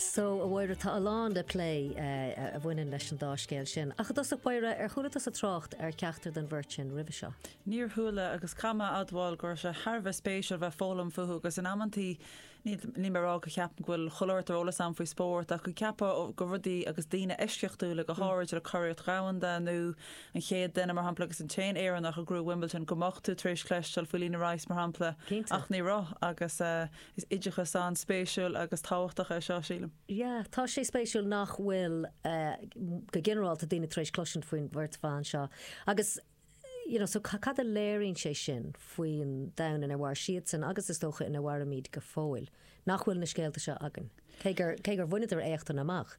So a Mháire tá a lán le plé a bhaineann leis an dá scéal sin. Ach i dtosach Mháire, ar chuala tú sa trácht ar cheachtar den bheirt sin roimhe seo? Níor chuala, agus caithfidh mé a admháil go raibh sé thar a bheith spéisiúil bheith foghlaim fúthu agus in amanntaí níl mé a rá go gceapaim go bhfuil chuile shórt eolas ann faoi spórt ach go gceapfá go rudaí agus daoine eisceachtúla go háirid le curaidh dhomhanda nó an chéad duine mar shampla agus an t-aon Éireannach a ghnóthaigh Wimbledon go mbeadh tú tar éis cloisteáil faoi Lena Rice mar shampla ach ní raibh agus Is oideachas an-spéisiúil agus tábhachtach é seo, sílim. Yeah, tá sé spéisiúil nach bhfuil, go ginearálta, daoine tar éis cloisint faoin mbeirt bhan seo agus, you know, so cad a léiríonn sé sin faoin domhan ina mhair siadsan agus is dócha ina mhairimid go fóill, nach bhfuil na scéalta seo againn, cé gur bhaineadar éachtaí amach?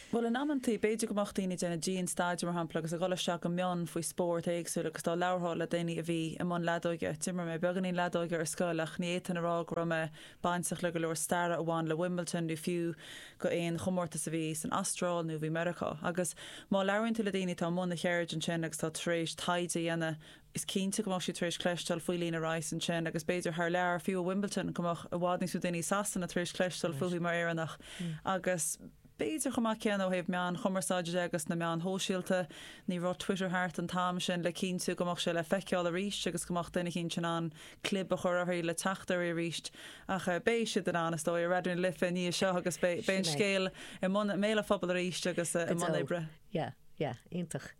Bhuel, in amanntaí, b'fhéidir go mbeadh daoine ag déanamh dianstaidéar, mar shampla, agus ag dhul isteach go mion faoi spóirt éagsúil agus dá labhrófá le daoine a bhí i mbun leadóige, d'imir mé beagáinín leadóige ar scoil ach ní fhéadfainn a rá go raibh mé bainteach le go leor staire a bhain le Wimbledon nó fiú go aon chomórtas a bhí san Astráil nó a bhí i Meiriceá. Agus má labhraíonn tú le daoine atá i mbun na ceirde sin agus atá tar éis taighde a dhéanamh is cinnte go mbeadh siad tar éis cloisteáil faoi Lena Rice ansin agus b'fhéidir thar lear, fiú i Wimbledon, go mbeadh i bhfad níos mó daoine i Sasana tar éis cloisteáil fúithi mar Éireannach agus b'fhéidir chomh maith céanna ó thaobh meáin chumarsáide de agus na meáin shóisialta. Ní raibh Twitter thart an t-am sin le cinntiú go mbeadh sé le feiceáil arís agus go mbeadh duine éicint in ann clib a chur uirthi le teacht uirthi arís ach beidh siad in ann, is dóigh, ar Raidió na Life i ndiaidh seo agus beidh an scéal i mbéal an phobail arís agus i mbun oibre. Yeah, yeah, iontach.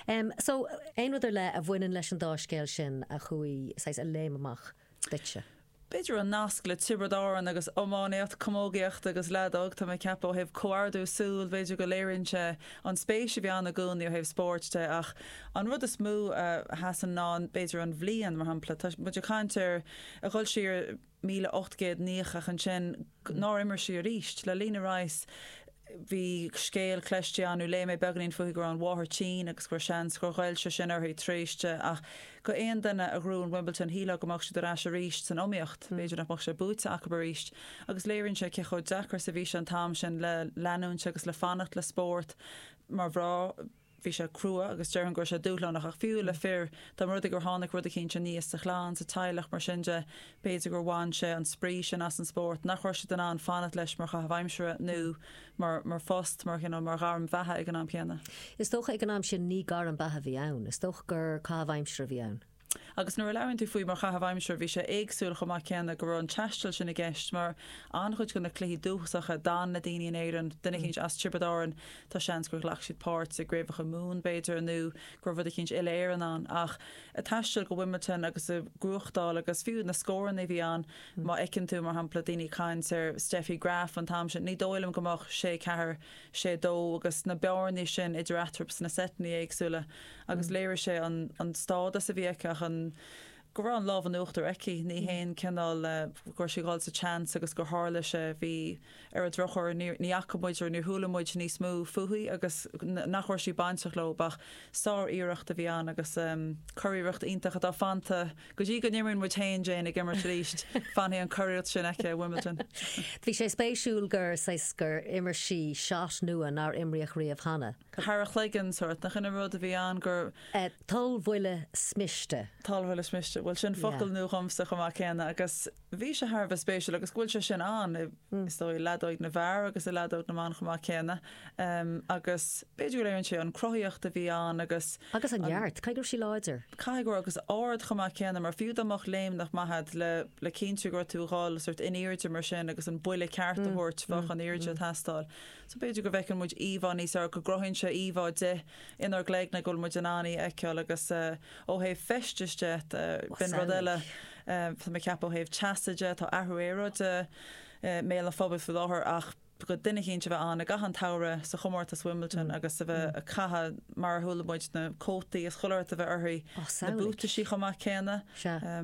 Em, so, aon rud ar leith a bhaineann leis an dá scéal sin a chuaigh, saghas, a léim amach duitse? B'fhéidir an nasc le Tiobraid Árann agus iománaíocht, camógaíocht agus leadóg. Tá mé ag ceapadh ó thaobh comhordú súl, b'fhéidir go léiríonn sé an spéis a bhí ann i gcónaí ó thaobh spóirt de ach an rud is mó a sheasann ná an, b'fhéidir an bhliain, mar shampla, tá muid ag caint ar, ag dhul siar, míle ocht gcéad nócha ach ansin nár imir sí arís. Le Lena Rice bhí scéal cloiste agam nó léigh mé beagainín fúithi go raibh an mháthair tinn agus go raibh seans gur ghoill sé sin uirthi thar éis ach go aon duine a ghnóthaíonn Wimbledon shílfeá go mbeadh siad ar ais arís san iomaíocht. B'fhéidir nach mbeadh sé buaite acu arís agus léiríonn sé cé chomh deacair is a bhí sé an t-am sin le leanúint agus le fanacht le spórt mar bhean. Bhí sé crua agus déarfainn go raibh sé dúshlánach ach fiú le fir, dá mba rud é gur tháinig rud eicínt aníos sa chlann, sa teaghlach, mar sin de, b'fhéidir gur bhain sé an spraoi sin as an spórt, nach raibh siad in ann fanacht leis mar chaitheamh aimsire nó mar phost, mar, you know, mar ghairm bheatha ag an am céanna. Is dócha ag an am sin ní gairm beatha a bhí ann, is dócha gur caitheamh aimsire a bhí ann. Agus nuair a labhraíonn tú faoi mar chaitheamh aimsire, bhí sé éagsúil chomh maith céanna go raibh an taisteal sin i gceist mar an-chuid de na cluichí dúchasacha, d'fhan na daoine in Éireann, duine eicínt as Tiobraid Árann, tá seans gur ghlac siad páirt i gCraobhacha Mumhan b'fhéidir nó go raibh rud eicínt uile-Éireann ann ach ag taisteal go Wimbledon agus ag gnóthachtáil agus fiú na scóranna a bhí ann, má fheiceann tú, mar shampla, daoine ag caint ar Steffi Graf an t-am sin, ní dóigh liom go mbeadh sé ceathair sé dó agus na bearnaí sin idir eatarthu sna seiteanna éagsúla agus léirigh sé an stádas a bhí aici ach an go raibh an lámh in uachtar aici. Ní haon cineál go raibh sí ag dul sa tseans agus gur tharla sé. Bhí ar an drochuair níor ní fhaca muid or níor chuala muid níos mó fúithi agus nach raibh sí bainteach leo ach sár-iarracht a bhí ann agus curiarracht iontach atá fanta Go dtí go n-imríonn muid féin Jane ag imirt arís, fanfaidh an churiarracht sin aici i Wimbledon. Bhí sé spéisiúil gur saghas, gur imir sí shot nua nár imríodh riamh cheana. Thar a chloigeann sórt. Nach shin an rud a bhí ann, gur. Tulbhuille smíste. Tulbhuille smíste. Bhuel sin focal nua dhomsa chomh maith céanna agus. Bhí sé thar a bheith spéisiúil agus go bhfuil sé sin ann i, is dóigh, i leadóid na bhfear agus i leadóid na mban chomh maith céanna agus b'fhéidir go léiríonn sé an cruthaíocht a bhí ann agus Agus an neart, caithfidh go raibh sí láidir. Caithfidh go raibh, agus ard chomh maith céanna mar fiú dá mbeadh léimneach maith agat le, le cinntiú go raibh tú ag dhul sórt in airde mar sin agus an buille ceart a thabhairt bheadh an airde ag teastáil. So b'fhéidir go bhfeiceann muid íomhá níos fearr, go gcruthaíonn sé íomhá di inár gcloigne go bhfuil muid in ann í a fheiceáil agus ó thaobh feistis de, b'in rud eile Tá mé ag ceapadh ó thaobh teasa de, tá athrú aeráide i mbéal an phobail faoi láthair ach do dhuine eicínt a bheith ann i gcaitheamh an tsamhraidh sa chomórtas Wimbledon agus a bheith ag caitheamh mar a chuala muid, na cótaí is chuile shórt a bheith uirthi, na buataisí chomh maith céanna.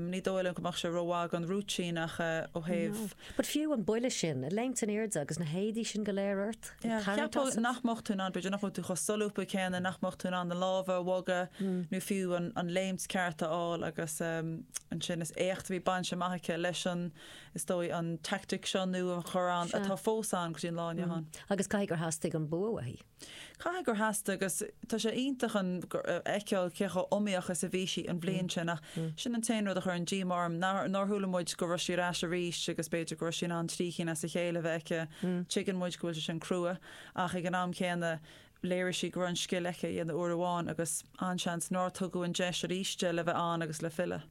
Ní dóigh liom go mbeadh sé rómhaith don rúitín ach ó thaobh. But fiú an buille sin, ag léimt in airde agus na héadaí sin go léir ort, ag Yeah, tarraingt ceapadh asat. nach mbeadh tú in ann, b'fhéidir nach bhfuil tú chomh solúbtha céanna, nach mbeadh tú in ann na lámha a bhogadh nó fiú an, an léimt ceart a fháil agus um, ansin is éacht a bhí bainte amach aici leis an, is dóigh an tactic seo nó an chorán Sea. atá fós ann go dtí an lá inniu ann. Agus caithfidh gur theastaigh an bua uaithi. Caithfidh gur theastaigh agus tá sé iontach an, a fheiceáil cé chomh iomaíoch is a bhí sí an bhliain sin ach sin an t-aon rud a chuireann díoma orm nár, nár chuala muid go raibh sí ar ais arís agus b'fhéidir go raibh sí in ann trí cinn as a chéile a bheith aici. Tuigeann muid go bhfuil sé sin crua ach ag an am céanna léirigh sí go raibh an scil aici é a dhéanamh uair amháin agus an-seans nár tugadh an deis arís di le bheith ann agus le filleadh.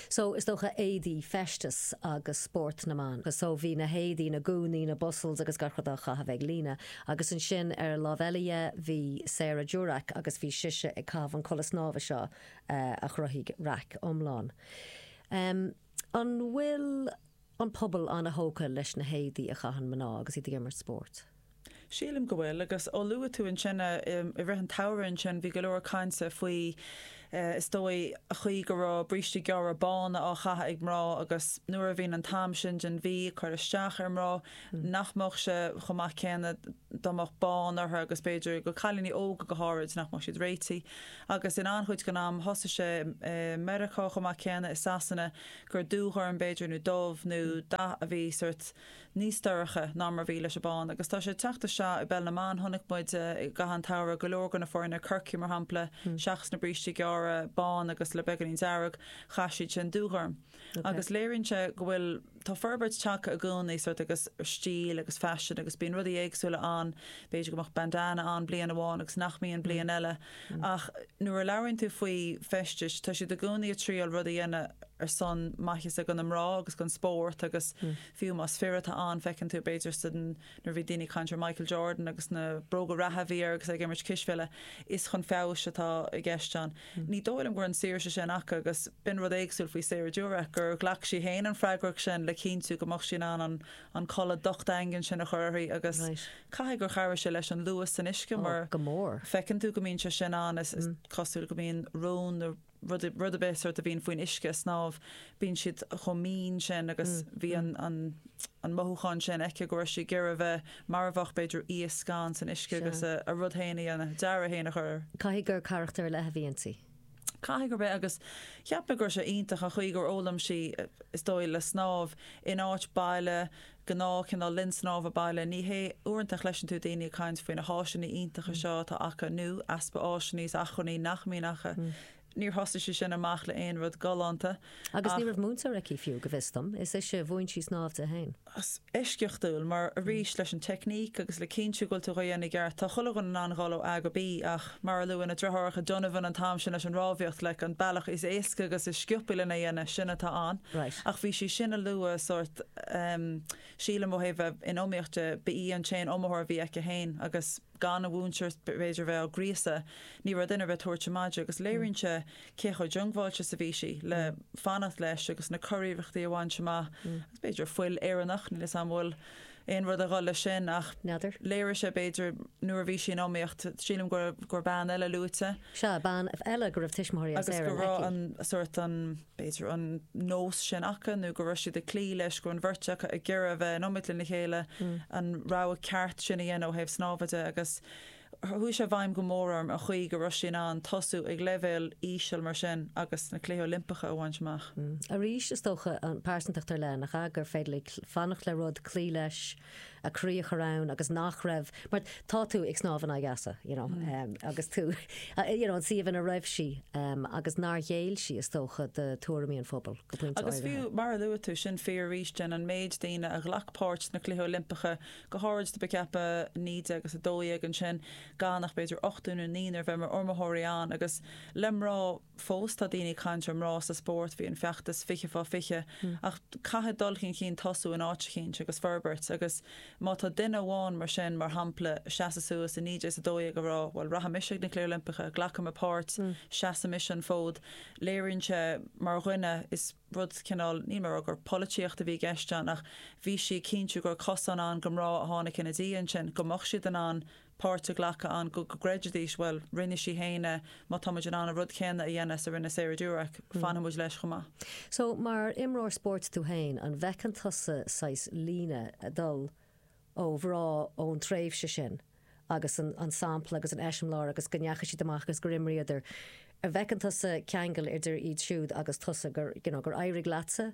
So, is dócha éadaí, feisteas agus spórt na mban. So, bhí na héadaí, na gúnaí, na bustles agus gach rud á chaitheamh ag Lena. Agus ansin ar an lámh eile dhe, bhí Sarah Durack agus bhí sise ag caitheamh an chulaith snámha seo a chruthaigh raic iomlán. An bhfuil an pobal an-thógtha leis na héadaí a chaitheann mná agus iad ag imirt spóirt? Sílim go bhfuil agus ó luaigh tú ansin i rith an tsamhraidh ansin bhí go leor cainte faoi is dóigh a chaoi go raibh brístí gearra bána á chaitheamh ag mná agus nuair a bhíonn an t-am sin den mhí ag cur isteach ar mhná nach mbeadh sé chomh maith céanna dá mbeadh bán orthu agus b'fhéidir do chailíní óga go háirid nach mbeadh siad réití agus in an-chuid den am thosaigh sé i Meiriceá chomh maith céanna i Sasana gur dúghorm b'fhéidir nó dubh nó dath a bhí sort níos dorcha ná mar a bhí leis an mbán agus tá sé ag teacht isteach i bpeil na mban, chonaic muid i gcaitheamh an tsamhraidh go leor de na foirne, Corcaigh mar shampla, seachas na brístí gearra bán agus le beagáinín dearg, chaith siad sin dúghorm agus léiríonn sé go bhfuil, tá forbairt tagtha i gcónaí sórt agus stíl agus faisean agus bíonn rudaí éagsúla ann, b'fhéidir go mbeadh bandana ann bliain amháin agus nach mbíonn bliain eile ach nuair a labhraíonn tú faoi feisteas, tá siad i gcónaí ag triail rud a dhéanamh ar son maitheasa do na mná agus don spórt agus. fiú más fir atá ann, feiceann tú b'fhéidir sa, nuair a bhí daoine ag caint ar Michael Jordan agus na bróga reatha a bhí air agus é ag imirt cispheile, is chun feabhais atá i gceist ann. Ní dóigh liom go raibh an saoirse sin acu agus b'in rud éagsúil faoi Sarah Durack, gur ghlac sí féin an fhreagracht sin le cinntiú go mbeadh sí in ann an, an chulaith dhocht dhaingean sin a chur uirthi agus Right. caithfidh gur chabhraigh sé leis an luas san uisce Oh, mar go mór. feiceann tú go mbíonn sé sin ann is, is cosúil go mbíonn rón na, rud nó rud ar bith sort a bhíonn faoin uisce ag snámh bíonn siad chomh mín sin agus bhí an an an mothúchán sin aici go raibh sí ag iarraidh a bheith mar a bheadh b'fhéidir iasc san uisce Sea. agus a a rud féin, a dearadh féin a chur air. Caithfidh gur carachtar ar leith a bhí inti. Caithfidh gurb é agus cheap mé go raibh sé iontach an chaoi gur fhoghlaim sí is dóigh le snámh in áit baile gnáth cineál linn snámha baile. Ní hé uaireanta a chloiseann tú daoine ag caint faoi na háiseanna iontacha seo atá acu, nó easpa áiseanna is acmhainní nach mbíonn acu. Níor thosaigh sí sin amach le aon rud galánta. Agus ní raibh múinteoir aici fiú, go bhfios dom. Is ise a mhúin sí snámh di féin. Is eisceachtúil, mar arís leis an teicníc agus le cinntiú go bhfuil tú dhá dhéanamh i gceart. Tá chuile dhuine in ann dhul ó A go B, ach mar a luaigh na deartháireacha Donovan an t-am sin leis an rámhaíocht, like, an bealach is éasca agus is sciopaí lena dhéanamh, sin atá ann. Right. Ach bhí sé sin an luas sórt. sílim ó thaobh bheith in iomaíocht de, ba í an t-aon iomaitheoir a bhí aici í féin agus gan an múinteoir b'fhéidir a bheith á gríosadh ní raibh duine ar bith ag tabhairt ama di agus léiríonn sé cé chomh diongbháilte is a bhí sí le fanacht leis agus na curiarrachtaí a bhaint amach agus b'fhéidir fuil Éireannach níl a fhios agam bhfuil aon rud ag dul leis sin ach N'fheadar. léirigh sé b'fhéidir nuair a bhí sí in iomaíocht sílim gur gur bean eile luaite. Sea, bean eile go raibh tuismitheoirí as Éirinn aici. Agus go raibh an sort an. b'fhéidir, an nós sin acu nó go raibh siad ag cloí leis, go raibh an bheirt acu ag iarraidh a bheith in iomaid lena chéile, an rogha ceart sin a dhéanamh ó thaobh snámha de agus chuaigh sé i bhfeidhm go mór orm an chaoi go raibh sí in ann tosú ag leibhéal íseal mar sin agus na Cluichí Oilimpeacha a bhaint amach. Arís, is dócha, an phearsantacht ar leith, nach ea? Gur féidir léi fanacht le rud, cloí leis. a croí a chur ann agus nach raibh, mar tá tú ag snámh in aghaidh easa, you know, agus tú, you know, an suíomh ina raibh sí agus nár ghéill sí, is dócha, do tuairimí an phobail go pointe áirithe. Agus fiú, mar a luaigh tú, ansin fiú aríst an méid daoine a ghlac páirt sna Cluichí Oilimpeacha, go háirid do be ceaptha 1912 ansin, gan ach b'fhéidir ochtar nó naonúr a bheith mar iomaitheoirí ann, agus le mná, fós tá daoine ag caint ar mná sa spórt, bhí an feachtas 20 fá 20, ach caithfidh dul chun cinn tosú in áit eicínt agus forbairt agus má tá duine amháin mar sin, mar shampla, seasamh suas i 1912 a rá bhuel rachaidh mise ag na Cluichí Oilimpeacha, glacfaidh mé páirt, seasfaidh mise an fód, léiríonn sé mar dhuine is rud cineál, níl mé a rá gur polaitíocht a bhí i gceist ann ach bhí sí ag cinntiú go raibh cosán ann go mná a tháinig ina diaidh ansin, go mbeadh siad in ann a páirt a ghlacadh ann, go gcreidfidís, bhuel, rinne sí féin é, má tá muid in ann an rud céanna a dhéanamh is a rinne Sarah Durack, fanfaidh muid leis chomh maith. So, mar imreoir spóirt tú féin, an bhfeiceann tusa saghas líne ag dul ó mhná ón tréimhse sin agus an sampla agus an eiseamláir agus go ndeachaigh siad amach agus gur imríodar, an bhfeiceann tusa ceangal idir iad siúd agus tusa, you know gur éirigh leatsa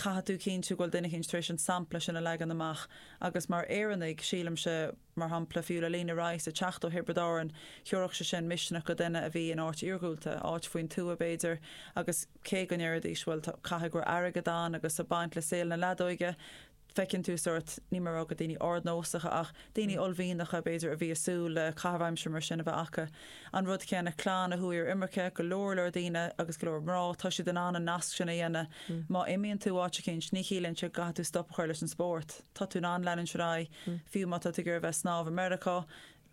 caithfidh tú cinntiú go bhfuil duine éicint tar éis an sampla sin a leagan amach agus mar Éireannaigh, sílimse, mar shampla, fiú le Lena Rice ag teacht ó Thiobraid Árann, thiúrfadh sé sin misneach go duine a bhí in áit iarghúlta, áit faoin tuath, b'fhéidir, agus cé go ndéarfaidís, bhuel, tá, caithfidh go raibh airgead ann agus a' baint le saol na leadóige, feiceann tú sórt, níl mé a rá gur daoine ardnósacha ach daoine uaillmhianacha, b'fhéidir, a bhí a' súil le caitheamh aimsire mar sin a bheith acu. An rud céanna clann a chuaigh ar imirce, go leor leor daoine agus go leor mná, tá siad in ann an nasc sin a dhéanamh. Má imíonn tú áit eicínt ní chiallaíonn sé go gcaithfidh tú stop a chur leis an spórt. Tá tú in ann leanúint ar aghaidh, fiú má tá tú ag iarraidh a bheith ag snámh i Meiriceá,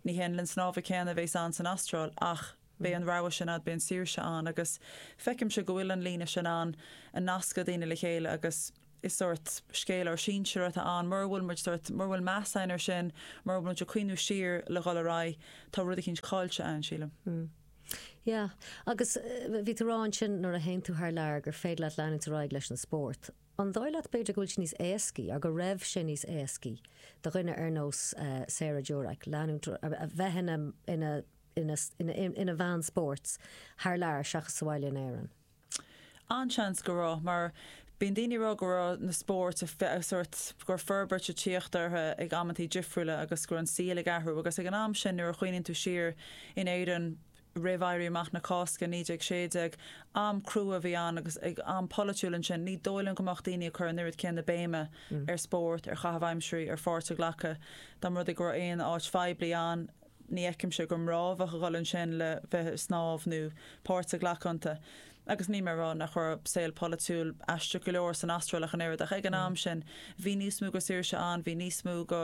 ní hé an linn snámha céanna a bheas ann san Astráil ach beidh an rogha sin agat, beidh an saoirse ann agus feicimse go bhfuil an líne sin ann ag nascadh daoine le chéile agus Is sórt scéal ár sinsir atá ann. Mura bhfuil muid sórt, mura bhfuil meas againn ar sin, mura bhfuil muid ag cuimhniú siar le dhul ar aghaidh, tá rud eicínt caillte ann, sílim. Mm. Yeah. Agus bhí tú a rá ansin nuair a théann tú thar lear gur féidir leat leanúint ar aghaidh leis an spórt. An dóigh leat b'fhéidir go bhfuil sé níos éascaí, or go raibh sé níos éascaí, do dhuine ar nós Sarah Durack leanúint, a bheith ina, ina, ina, ina, ina bhean spóirt thar lear seachas sa bhaile in Éirinn? An-tseans go raibh, mar bíonn daoine ag rá go raibh na spóirt ag fás sórt, go raibh forbairt ag tíocht ortha ag amantaí difriúla agus go raibh an saol ag athrú agus ag an am sin nuair a chuimhníonn tú siar in Éirinn roimh Éirí Amach na Cásca 1916, am crua a bhí ann agus ag am polaitiúil ansin ní dóigh liom go mbeadh daoine ag cur an oiread céanna béime ar spórt, ar chaitheamh aimsirí, ar pháirt a ghlacadh dá mba rud é go raibh aon áit phoiblí ann. Ní fheicimse gur mná a bheadh ag dul ansin le bheith ag snámh nó páirt a ghlacadh iontu. Agus níl mé ag rá nach raibh saol polaitiúil aisteach go leor san Astráil ach an oiread, ach ag an am sin bhí níos mó go saoirse ann, bhí níos mó go,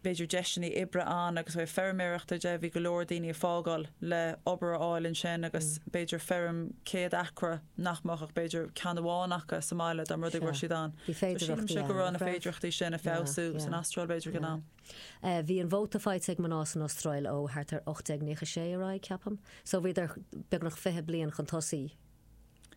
b'fhéidir, deiseanna oibre ann agus ó thaobh feirmeoireachta de, bhí go leor daoine ag fágáil le obair a fháil ansin agus b'fhéidir feirm 100 acra nach mbeadh ach b'fhéidir ceann amháin acu sa mbaile dá mba rud é go raibh siad ann. So sílimse go raibh na féidireachtaí sin ag feabhsú san Astráil b'fhéidir ag an am. Bhí an vóta faighte ag mná san Astráil ó thart ar 1896 ar aghaidh, ceapaim, so bhíodar beagnach fiche bliain chun tosaigh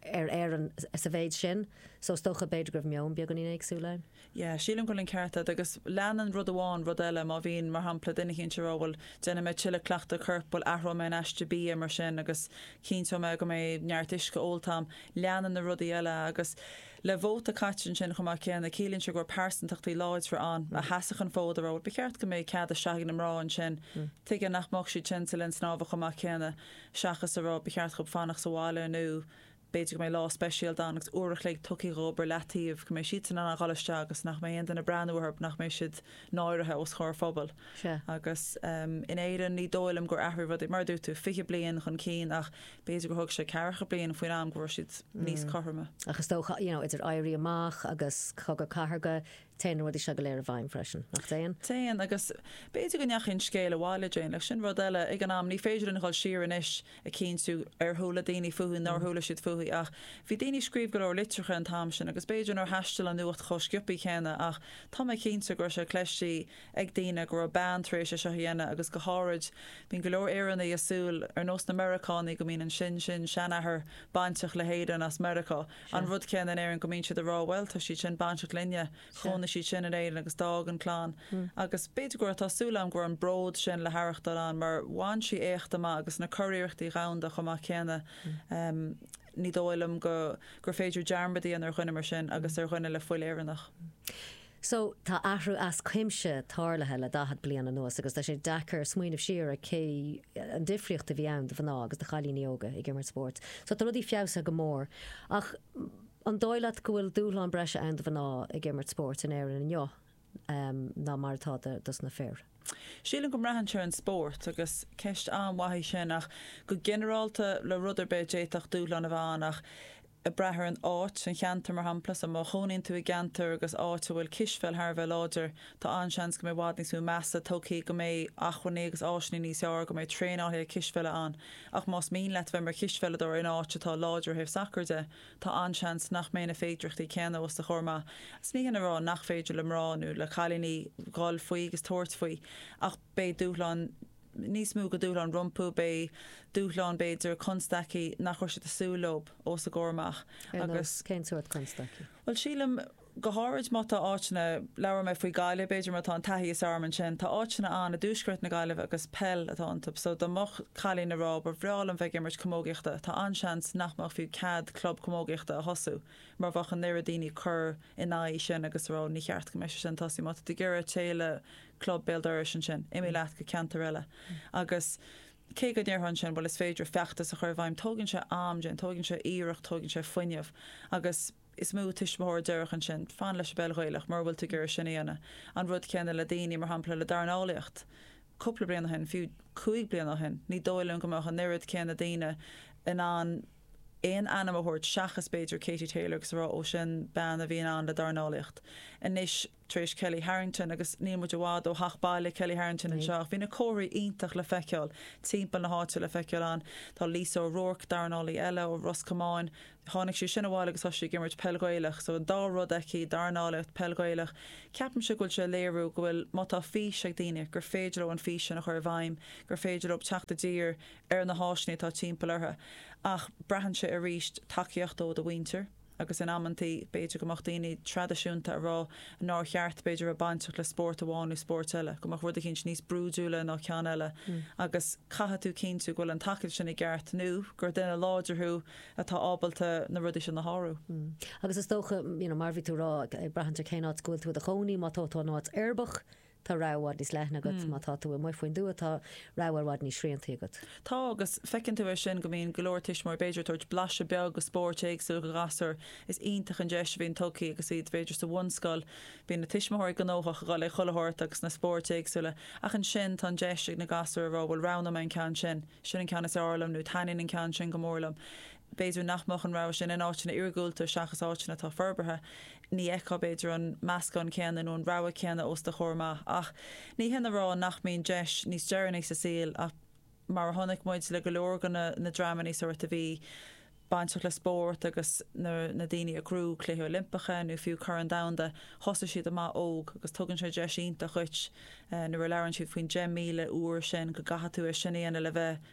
ar Éirinn sa mhéid sin, so is dócha b'fhéidir go raibh meon beagáinín éagsúil ann. Yeah, sílim go bhfuil an ceart a'd, agus leanann rud amháin rud eile, má bhíonn, mar shampla, duine cinnte a rá, bhuel, déanfaidh mé tuilleadh cleachtadh coirp, bhuel, athróidh mé an aiste bia mar sin agus cinnteoidh mé go mbeidh neart uisce ólta a'm, leanann na rudaí eile, agus. Le vóta caite ansin chomh maith céanna, ciallaíonn sé go raibh pearsantachtaí láidre ann a sheasadh an fód ag rá ba cheart go mbeidh cead isteach ag na mná ansin. Tuige nach mbeadh siad sin sa linn snámha chomh maith céanna seachas a rá ba cheart dhób fanacht sa bhaile nó b'fhéidir go mbeidh lá speisialta ann agus uair a chloig tugtha dhób ar leataobh, go mbeidh siadsan in ann a dhul isteach agus nach mbeidh aon duine ag breathnú orthub, nach mbeidh siad náirithe os comhair phobail. Agus in Éirinn ní dóigh liom gur athraigh rudaí. Mar a dúirt tú, fiche bliain chun cinn ach b'fhéidir gur thóg sé ceathracha bliain faoin am go raibh siad níos cothroime. Ach is dócha, you know, idir Éirí Amach agus Cogadh Cathartha, téann na rudaí seo go léir i bhfeidhm freisin, nach dtéann? Téann, agus b'fhéidir go ndeachaigh an scéal abhaile, Jane, ach sin rud eile, ag an am ní féidir linn a dhul siar anois ag cinntiú ar chuala daoine fúithi, nár chuala siad fúithi, ach bhí daoine ag scríobh go leor litreacha an t-am sin agus b'fhéidir nár thaistil an nuacht chomh sciopthaí céanna ach tá mé cinnte go raibh sé cleistí ag daoine go raibh bean tar éis é seo a dhéanamh agus go háirid bíonn go leor Éireannaigh ag súil, ar nós na Meireacánaigh, go mbíonn an sin sin seanathair bainteach le hÉirinn as Meiriceá. An rud céanna in Éirinn go mbíonn siad ag rá bhuel tá siad sin bainteach linne, chónaigh siad sin in Éirinn agus d'fhág an clann. Agus b'fhéidir go raibh, tá súil agam go raibh an bród sin le haireachtáil ann mar bhain sí éacht amach agus na curiarrachtaí dhomhanda chomh maith céanna. Ní dóigh liom go gur féidir dearmad a dhéanamh ar dhuine mar sin agus ar dhuine le fuil Éireannach. So, tá athrú as cuimse tarlaithe le daichead bliain anuas agus tá sé deacair smaoineamh siar ar cé, an difríocht a bhí ann do mhná agus do chailíní óga ag imirt spóirt. So, tá rudaí feabhsaithe go mór. Ach, an dóigh leat go bhfuil dúshlán breise ann do mhná ag imirt spóirt in Éirinn inniu ná mar atá dos na fir? Sílim go mbraitheann sé ar an spórt agus ceist an-mhaith í sin ach go ginearálta le rud ar bith d'fhéadfadh dúshlán a bheith ann ach ag brath ar an áit, an cheantar mar shampla, so má chónaíonn tú i gceantar agus áit a bhfuil cispheil thar a bheith láidir tá an-seans go mbeidh i bhfad níos mó measa tugthaí, go mbeidh acmhainní agus áiseanna níos fhearr, go mbeidh traenálaithe cispheile ann ach más mian leat bheith mar chispheileadóir in áit atá láidir ó thaobh sacar de, Tá an-seans nach mbeidh na féidireachtaí céanna os do chomhair amach. Ní shin a rá nach féidir le mná nó le cailíní dhul faoi agus tabhairt faoi ach beidh dúshlán níos mó go dúshlán rompu, beidh dúshlán, b'fhéidir, constaicí nach raibh siad ag súil leo os a gcomhair amach. Ar nós, cén sórt constaicí? Bhuel, sílim. go háirid má tá áiteanna, labhair mé faoi Ghaillimh, b'fhéidir má tá an taithí is fearr agam ansin, tá áiteanna ann i dtuaisceart na Gaillimhe agus peil atá iontu so dá mbeadh cailín a' rá ba bhreá liom bheith ag imirt camógaíochta, tá an-seans nach mbeadh fiú cead club camógaíochta a thosú mar a bheadh an oiread daoine ag cur in aghaidh sin agus ag rá ní cheart go mbeadh sé sin tosaithe, má tá tú ag iarraidh téigh le club béal dorais ansin, imigh leat go ceantar eile agus cé go ndéarfá ansin bhuel is féidir feachtas a chur i bhfeidhm, tógann sé am, déanann, tógann sé iarracht, tógann sé fuinneamh agus. is mó tuismitheoir a déarfadh ansin, fan leis an bpeil Ghaelach mura bhfuil tú ag iarraidh sin a dhéanamh. An rud céanna le daoine, mar shampla, le dornálaíocht. Cúpla bliain ó shin, fiú cúig bliana ó shin, ní dóigh liom go mbeadh an oiread céanna daoine in ann aon ainm a thabhairt seachas b'fhéidir Katie Taylor agus ag rá 'ó sin bean a bhí ag plé le dornálaíocht'. Anois. tar éis Kellie Harrington agus níl muid i bhfad ó theach baile Kellie Harrington anseo ach bhí na comharthaí iontach le feiceáil timpeall na háite le feiceáil ann tá Lisa O Rourke, dornálaí eile ó Ros Comáin, tháinig sí sin abhaile agus tá sí ag imirt peil Ghaelach so an dá rud aici, dornálaíocht, peil Ghaelach. Ceapaimse go bhfuil sé ag léiriú go bhfuil má tá fís ag daoine gur féidir leo an fís sin a chur i bhfeidhm, gur féidir leo teacht i dtír ar na háiseanna atá timpeall orthu ach braitheann sé arís tacaíocht ó do mhuintir, agus in amanntaí b'fhéidir go mbeadh daoine traidisiúnta ag rá nár cheart b'fhéidir a bheith bainteach le spórt amháin nó spórt eile, go mbeadh rud eicínt níos brúidiúla ná ceann eile agus caithfidh tú cinntiú go bhfuil an tacaíocht sin i gceart nó gur duine láidir thú atá ábalta na rudaí sin a shárú. Agus is dócha, you know, mar bhí tú a rá, ag braith ar cén áit go bhfuil tú i do chónaí, má tá tú in áit uirbeach, Tá rogha i bhfad níos leithne agat má tá tú amuigh faoin dtuath, tá rogha i bhfad níos srianta agat. Tá, agus feiceann tú é sin go mbíonn go leor tuismitheoirí b'fhéidir ag tabhairt blaiseadh beag de spóirt éagsúla do ghasúir, is iontach an deis a bhíonn tugtha agus iad b'fhéidir sa bhunscoil, bíonn na tuismitheoirí gnóthach ag dul agus á dtabhairt ag na spóirt éagsúla, ach ansin tá an deis ag na gasúir a rá bhuel roghnóidh mé an ceann sin, sin an ceann is fearr liom nó taitníonn an ceann sin go mór liom. b'fhéidir nach mbeadh an rogha sin in áiteanna iargúlta seachas áiteanna atá forbartha, ní fheicfeá b'fhéidir an meascán céanna nó an rogha céanna os do chomhair amach. Ach ní shin a rá nach mbíonn deis níos deireanaí sa saol ach mar a chonaic muid le go leor de na dreamanna a d'éirigh leo a bhí bainteach le spórt agus na daoine a shroich Cluichí Oilimpeacha nó fiú Corn Domhanda, thosaigh siad amach óg agus tugann sé deis iontach dhuit nuair a labhrann siad faoin 10,000 uair sin go gcaithfidh tú é sin a dhéanamh le bheith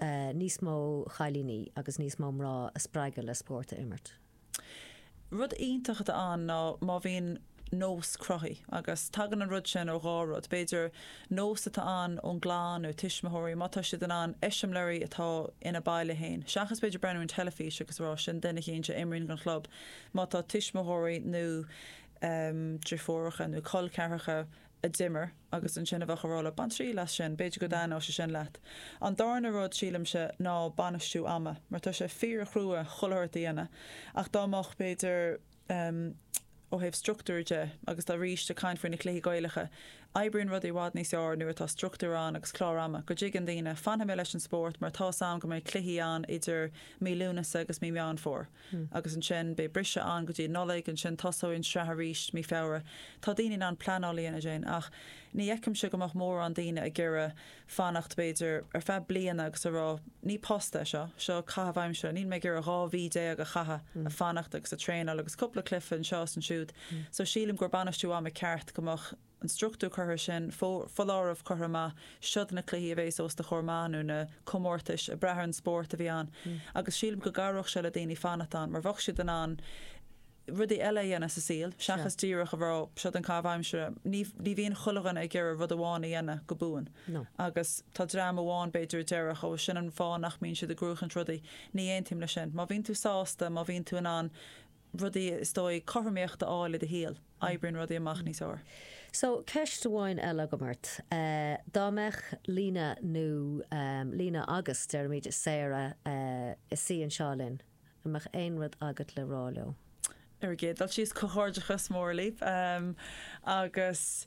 níos mó chailíní agus níos mó mná a spreagadh le spórt a imirt. Rud iontach atá ann ná má bhíonn nós cruthaithe, agus tagann an rud sin ó dhá rud, b'fhéidir nós atá ann ón gclann nó tuismitheoirí, má tá siad in ann eiseamláirí atá ina baile féin, seachas b'fhéidir breathnú an teilifís agus a rá sin duine eicínt a imríonn don chlub, má tá tuismitheoirí nó driofúracha nó col ceathracha a d'imir agus ansin a bheadh a rá leat, 'Bain triail as sin, b'fhéidir go dtaitneodh sé sin leat'. An darna rud, sílimse, ná bainistiú ama, mar tá sé fíorchrua chuile shórt a dhéanamh ach dá mbeadh, b'fhéidir, em, ó thaobh struchtúir de agus tá, arís, ag caint faoi na cluichí Gaelacha, oibríonn rudaí i bhfad níos fhearr nuair atá struchtúr ann agus clár ama, go dtuigeann daoine, 'Fanfaidh mé leis an spórt mar tá's a'm go mbeidh cluichí ann idir mí Lúnasa agus mí Meán Fómhair'. agus ansin beidh briseadh ann go dtí an Nollaig, ansin tosóidh an sraith arís mí Feabhra. Tá daoine in ann pleanáil a dhéanamh ansin, ach ní fheicimse go mbeadh mórán daoine ag iarraidh fanacht b'fhéidir ar feadh bliana agus a rá ní post é seo, seo caitheamh aimsire, níl mé ag iarraidh 12 mhí a chaitheamh ag fanacht agus ag traenáil agus cúpla cluiche anseo is ansiúd. So sílim gur bainistiú ama ceart go mbeadh. an struchtúr curtha sin, foláireamh curtha amach, siod na cluichí a bhéas os do chomhair amach nó na comórtais ag brath ar an spórt a bhí ann agus sílim go gcabhródh sé le daoine fanacht ann mar bheadh siad in ann rudaí eile a dhéanamh sa saol seachas díreach a bheith ag rá siod an caitheamh aimsire. Ní bhíonn chuile dhuine ag iarraidh rud amháin a dhéanamh go buan agus tá dream amháin b'fhéidir a déarfadh ó sin an fáth nach mbíonn siad ag gnóchaint rudaí. Ní aontaím leis sin. Má bhíonn tú sásta, má bhíonn tú in ann, rudaí is dóigh, cothromaíocht a fháil i do shaol, oibríonn rudaí amach níos fhearr. So, ceist amháin eile agam ort. Dá mbeadh Lena nó Lena agus, deirimid, Sarah is í anseo linn, an mbeadh aon rud agat le rá leo? Ar an gcéad dul síos, comhghairdeachas mór libh agus.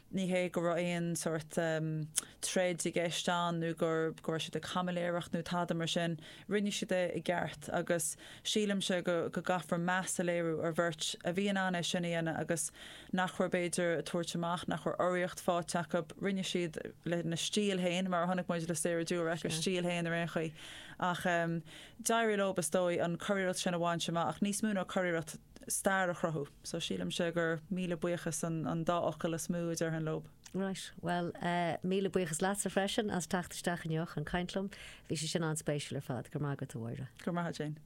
Ní hé go raibh aon sórt troid i gceist ann nó go raibh siad ag caimiléireacht nó tada mar sin. Rinne siad é i gceart agus sílimse go gcaithfear meas a léiriú ar bheirt a bhí in ann é sin a dhéanamh agus nach raibh b'fhéidir ag tabhairt amach, nach raibh urraíocht fáighte acu. Rinne siad lena stíl féin, mar a chonaic muid le Sarah Durack, a stíl féin ar aon chaoi. Ach d'éirigh leo, is dóigh, an curiarracht sin a bhaint amach, ach níos mó ná curiarracht. stair a chruthú. So sílimse gur míle buíochas an dá fhocal is mó a déarfainn leob. Right, bhuel eh míle buíochas leatsa freisin as teacht isteach inniu chun caint liom. Bhí sé sin an-spéisiúil ar fad. Go raibh maith agat a Mháire. Go raibh maith a't Jane.